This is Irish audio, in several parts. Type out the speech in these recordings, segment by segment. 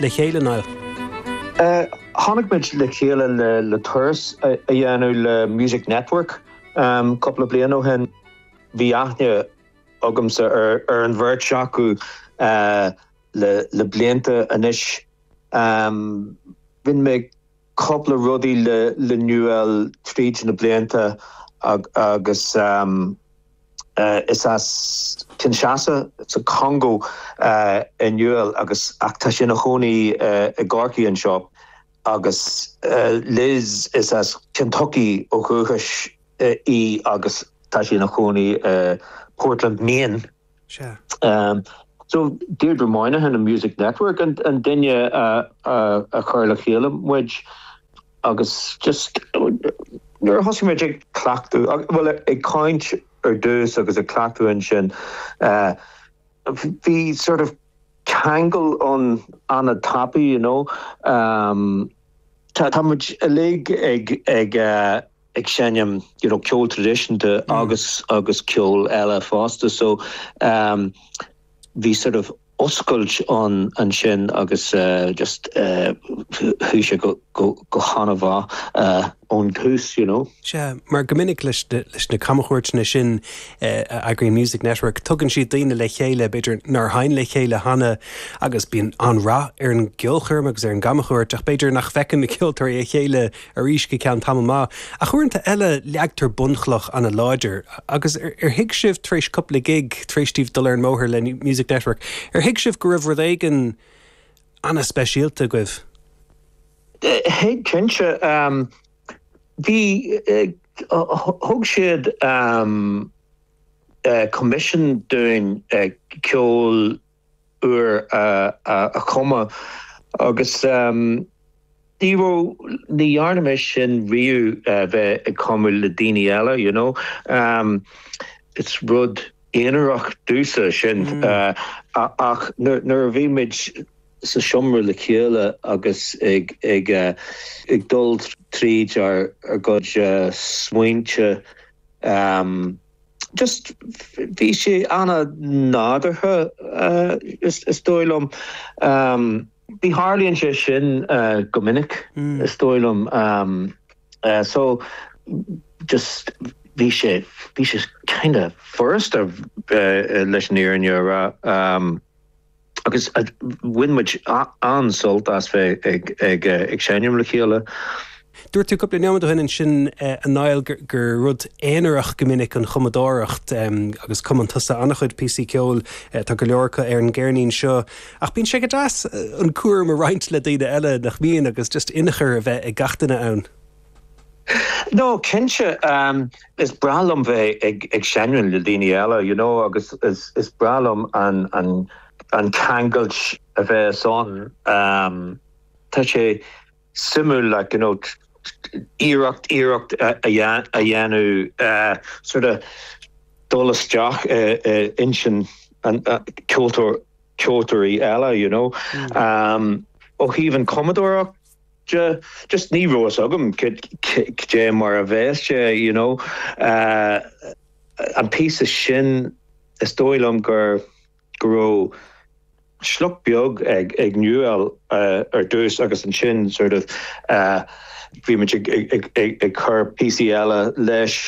le chéile, Niall? Tháinig muid le chéile le turas a dhéanamh le Music Network cúpla bliain ó shin. Bhí aithne agamsa ar an bheirt acu le blianta anois. Rinne mé cúpla rudaí le Niwel tríd na blianta agus is as Kinshasa sa Chongó é Niwel agus ach tá sé ina chónaí i gCorcaigh anseo agus Liz, is as Kentucky ó dhúchas í agus tá sí ina chónaí i Portland, Maine. So, Deirdre Moynihan an Music Network an duine a chur le chéile muid agus just nuair a thosaigh muid ag cleachtadh, bhuel ag caint ar dtús agus ag cleachtadh ansin, bhí sort of ceangal ann an-tapaidh, you know. Tá muid uilig ag. ag seinm you know ceol traidisiúnta agus agus ceol eile fosta so ehm bhí sort of oscailt ann ansin agus eh just eh chuaigh sé go go go han-mhaith eh ón tús you know. Sea, mar go minic leis na leis na camchuairteanna sin eh a eagraíonn Music Network tugann siad daoine le chéile b'fhéidir nár sheinn le chéile cheana agus bíonn an-rath ar an gceolchoirm agus ar an gcamchuairt ach b'fhéidir nach bhfeiceann na ceoltóirí a chéile arís go ceann tamall maith, ach uaireanta eile leagtar bunchloch an-láidir. Agus ar thuig sibh tar éis cupla gig, tar éis daoibh dul ar an mbóthar le Music Network, ar thuig sibh go raibh rud éigin ana-speisialta agaibh? Thuig, cinnte. Bhí, thug siad coimisiún dúinn ceol nua a chumadh agus ní raibh, ní dhearna mise sin riamh bheith ag cumadh le daoine eile you know, is rud aonarach domhsa sin ach nuair a bhí muid sa seomra le chéile agus ag dul tríd ár ár gcuid smaointe, just bhí sé ana-nádúrtha is dóigh liom em. ní tharlaíonn sé sin go minic is dóigh liom em so just bhí sé bhí sé kind of furasta leis an fhírinne a rá. agus bhain muid an-sult as bheith ag seinm le chéile. Dúirt tú cúpla nóiméad ó shin ansin, a Niall, gur rud aonarach go minic an chumadóireacht, agus cumann tusa an-chuid píosaí ceoil, tá go leor acu ar an gceirnín seo, ach bíonn sé go deas an cúram a roinnt le daoine eile, nach mbíonn, agus just inchur a bheith ag gach duine ann? No, cinnte, is breá liom bheith ag seinm le daoine eile, you know, agus is breá liom an ceangal a bhíos ann. Tá sé suimiúil, like, you know, iarracht, iarracht a dhéanamh sort of dul isteach i intinn an ceoltóir, ceoltóirí eile, you know. Ó thaobh an chumadóireacht, just ní raibh fhios agam cé mar a bheas sé you know an píosa sin is dóigh liom gur go raibh sliocht beag ag ag Niwel ar dtús agus ansin sort of bhí muid ag ag ag ag cur píosaí eile leis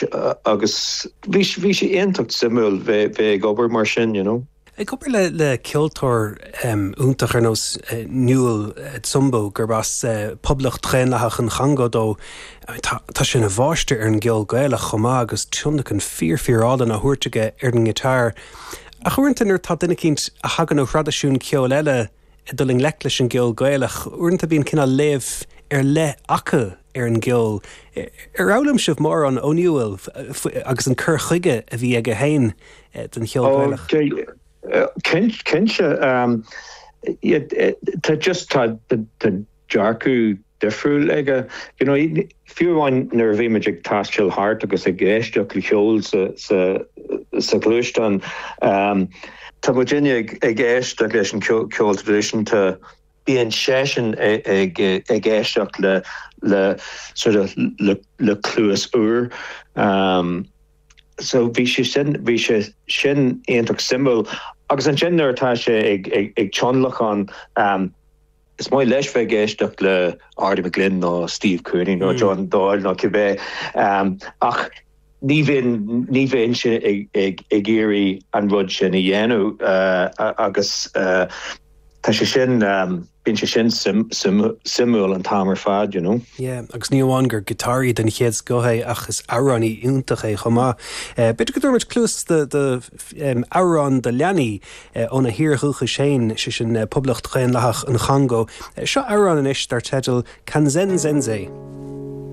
agus bhí bhí sé iontach suimiúil bheith bheith ag obair mar sin you know. Ag obair le le ceoltóir iontach ar nós Niwel Tsumbu, gurb as Poblacht Dhaonlathach an Chongó dó, tá sé ina mháistir ar an gceol Gaelach chomh maith agus tionlacan fíor fíor álainn á thabhairt aige ar an ngiotár. Ach uaireanta nuair atá duine eicínt a thagann ó thraidisiún ceoil eile ag dul i ngleic leis an gceol Gaelach, uaireanta bíonn cineál léamh ar leith acu ar an gceol. Ar fhoghlaim sibh mórán ó Niwel agus an cur chuige a bhí aige féin don cheol Gaelach? Cinnte. Tá just, tá dearcadh difriúil aige. You know, fiú amháin nuair a bhí muid ag taistil thart agus ag éisteacht le ceol sa ghluaisteán, tá muidne ag éisteacht leis an cheol traidisiúnta bíonn seisean ag éisteacht le cluas úr. So bhí sé sin, bhí sé sin iontach suimiúil. Agus ansin nuair atá sé ag tionlacan, is maith leis bheith ag éisteacht le Arty McGlynn nó Steve Cooney nó John Doyle nó cibé. Ach Ní bhíonn sé ag iarraidh an rud sin a dhéanamh agus tá sé sin, bíonn sé sin suimiúil an t-am ar fad, you know. Yeah, agus ní amháin gur giotáraí den chéad scoth é ach is amhránaí iontach é chomh maith. B'fhéidir go dtabharfadh muid cluas do amhrán do leanaí óna thír dhúchais féin, sé sin Poblacht Dhaonlathach an Chongó. Seo amhrán anois dar teideal Kanzenzenze.